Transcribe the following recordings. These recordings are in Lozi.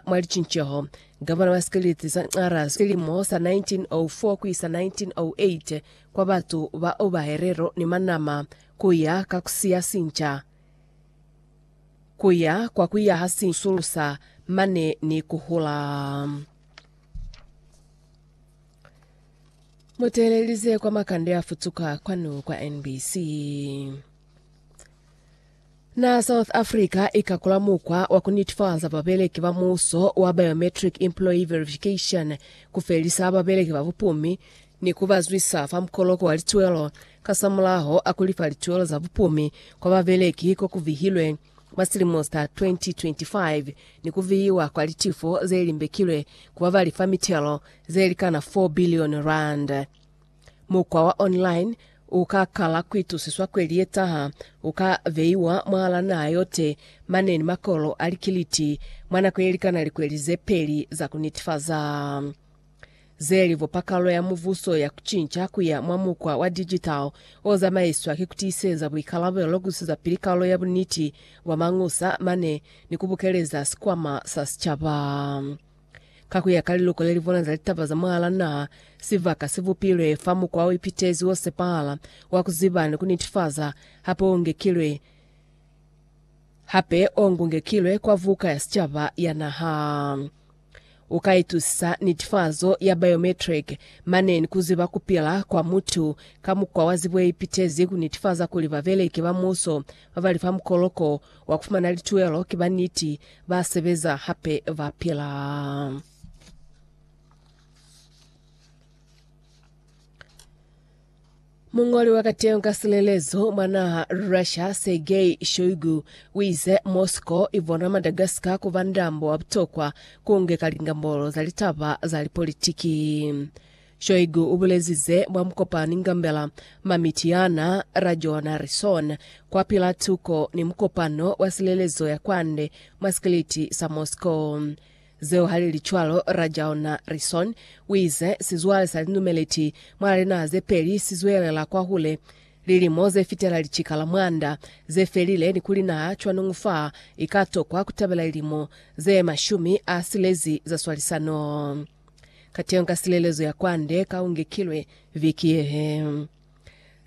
Mwa licinceho, Gavana wa Sikeleti sa Nxarha silimo sa 1904 ku isa 1908 kwa batu ba oba helelo ni manama ku ya ka ku siya sinca, ku ya kwa ku yaha sinca, ku sulusa mane ni ku hula. Mu teelelize kwa makande a futuka kwanu kwa NBC. Naha South Africa ikakula mukwa wa kunitifaza babeleki ba muuso wa Biometric Employee Verification kufelisa babeleki ba bupumi ni kubazwisa fa mukoloko wa lituelo kasamulaho a kulifa lituelo za bupumi kwa babeleki kokuvihilwe mwa silimo sa 2025 ni kuvihiwa kwa litifo zelimbekilwe ku babalifa mitelo zelikana 4 billion rand. Mukwa wa online u ka kala ku itusiswa kwe li etaha, u ka beiwa mwahal'a naha yote mane ni makolo a likiliti mwa nako ye likana likweli ze peli za ku nitifaza ze li bupa kalulo ya Mubuso ya ku cinca ku ya mwa mukwa wa digital o zamaiswa ki ku tiiseza buikalabelo, ku iseza pili kalulo ya buniti bwa mañusa mane ni ku bukeleza sikwama sa sicaba. Ka ku ya ka liluko le li bona za litaba za mwahal'a naha, sibaka si bupilwe fa mukwa o ipitezi o sepahala wa ku ziba ni ku nitifaza, hape o ngekilwe hape o ngungekilwe kwa Vuka ya Sicaba ya Naha. U ka itusisa nitifazo ya biometric mane ni ku ziba ku pila kwa mutu ka mukwa wa zibo ye ipitezi ku nitifaza kuli babeleki ba muuso Ba ba li fa mukoloko wa ku fumana lituelo ki ba niti, ba sebeza, hape ba pila. Muñoli wa kateho ka silelezo mwa naha Russia, Sergei Shoigu, u ize Moscow i bona Madagascar ku ba ndambo wa butokwa ku nge ka lingambolo za litaba za lipolitiki. Shoigu ubulezize mwa mukopani ngambela ma Mityana, Rajo na Rison, kwapila tuko ni mukopano wa silelezo ya kwande mwa sikiliti sa Moscow. Zeo halili cwalo, Rajo na Rison uize sizwale sa linumeleti mwa linaha zepeli sizwelela kwahule. Lilimo zefitela licika la mwanda zefelile ni kuli naha cwanungu fa ikatokwa kutabela lilimo ze mashumi a silezi za swalisano. Kateho ka silelezo ya kwande ka ungekilwe viki yehe.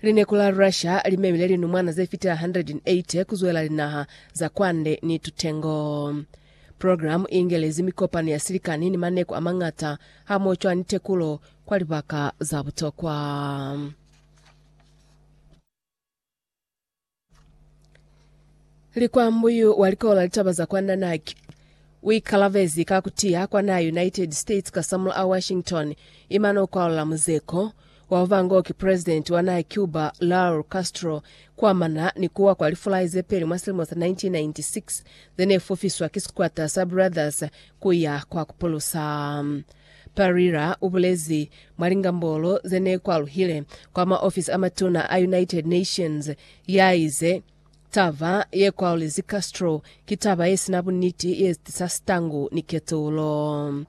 Lineku la Russia limemile linumwana ze fitela 180 kuzwela linaha za kwande ni tutengo. Programu iingelezi mikopano ya silikani ni maneku amañata hamoho cwa ni tekulo kwa libaka za butokwa. Likwambu yu wa likola litaba za kwa Nanak u ikalabezi ka ku tiya kwa naha United States ka samula a Washington imana u kwalula muzeko wa ba ngo ki president wa naha Cuba Raul Castro kuamana ni kuwa kwa lifulai ze peli mwa silimo sa 1996 ze ne fufiswa ki sikwata sa Brothers ku ya kwa ku pulusa Pereira ubulezi mwa lingambolo zenekwaluhile kwa maofisi amatuna a United Nations, yaize, Taba yekwaulezi Castro ki taba yesina buniti yezitisa sitangu ni ketulo.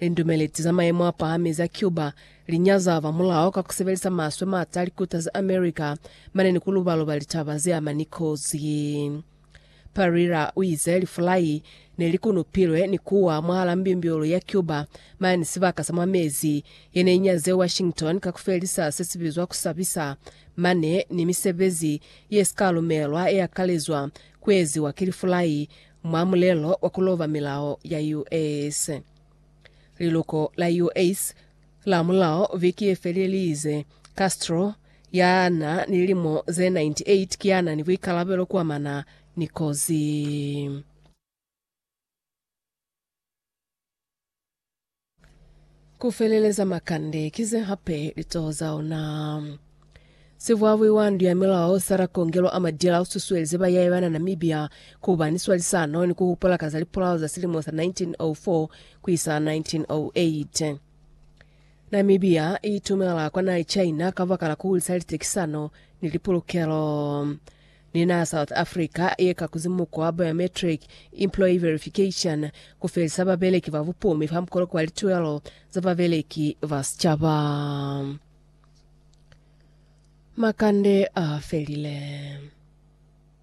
Lindumeleti za mayemo apahami za Cuba linyaza ba mulao ka kusebelisa maswe mata likutazi America mane ni kulubaluba litaba zeamani kozi. Pereira uize lifulai nelikunupilwe ni kuwa mwahala mbimbiulu ya Cuba mane sibaka sa mwa mezi yenenyazile Washington ka kufelisa sesibizwa kusabisa mane ni misebezi yesikalumelwa yeakalezwa kueziwa ki lifulai mwa mulelo wa kuloba milao ya US. Liluko la US Lamulaho viki ye felelize, Castro, ya na ni lilimo ze 98, ki ya na ni buikalabelo ku amana ni kozi. Ku feleleza makande ki ze hape litoho za ona. Sivwavwi wa ndu ya milao Sarah Kongelo Amadila ususuelize bayaye bana Namibia kuba ni swalisano ni kuhupula ka za lipulao za silimo sa 1904 kuisa 1908. Namibia iitumela kwa naha ye China kabaka la kuhulisa litekisano ni lipulukelo ni naha South Africa ye ka kuzi muko wa biometric employee verification kufelisa babeleki ba bupumi fa mukoloko wa lituelo za babeleki ba sicaba. Makande a felile.